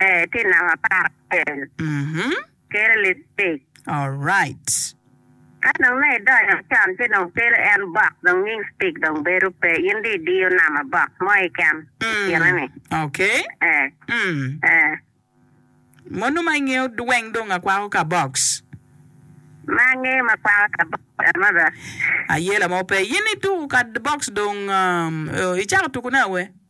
Ee, tye namba apar acel. Mhm. Kelo liptic. Alright. Ka dong me idonyo can ci dong kelo en box dong nying stick dong bedo pe. In dong idiyo namba box mo keken i Mm. kine ni. Okay. Ee. Mm. Ee. Monu ma ingeyo weng dong akwako ka box. Ma angeyo ma kwako ka box another. Ayela mo pe. In ituko ka box dong um, icako tuku ne awe?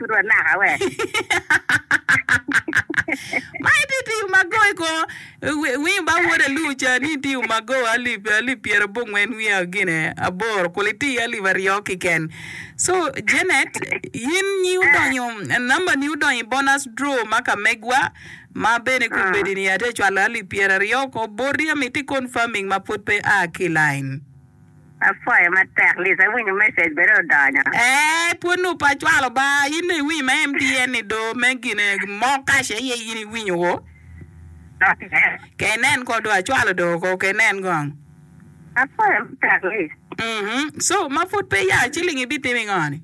pud wanaka we. Ma iti iti umago i ko winyo ba wod alur ca ni iti umago alip alip pyera bongwen wiya gine aboro kuli iti alip aryo kiken. So Janet yin nyi udonyo number ni udonyo i bonus draw ma ka megwa ma bene ku ah. bedi ni ate cwalo alip pyera aryo ko boti amiti confirming ma pud pe a ki line. Apwoyo matek Liz, awinyo message bene odonyo. Eeh pwod nongo pe acwalo ba. In dong iwinyo ma MTN ni do me gine mo kaci aye in iwinyo o. Ke inen ko do acwalo do ko ke inen kong. Apwoyo matek Liz. Mhm so ma pwod pe ya ciling ibitimo ingo ni?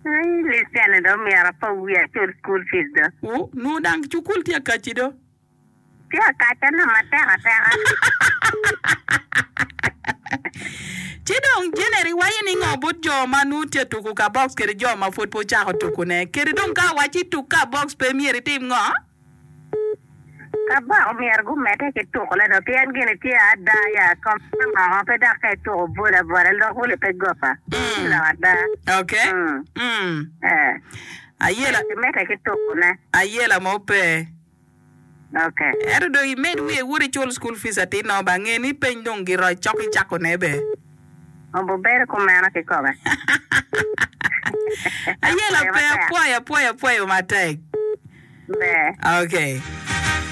Eii Liz cene do omyero apo wiya acul school fees do. Ooh nongo dang cukul tye akaci do. Tye akacane matek ateka. Ci dong Jeneri waco ni ngo bot jo ma nwo tye tuku ka box kede jo ma pwod pe ocako tuku ne? Kede dong ka awaco ituk ka box pe myero itim ngo? Ka box myero gu mete ki tuku ne do pien gini tye ada ya kom me moko pe dok ka ituku bol abora lok wili pe gopa. Ci lok ada. Ok. Mm. Eh. Ayela. Myero ki mete ki tuku ne. Ayela mo pe. Ento dong imed wiye wot icul school fees atir nongo ba nge ni peny dong giroc cok icako ne be. Ayela pe apwoyo apwoyo apwoyo matek ok.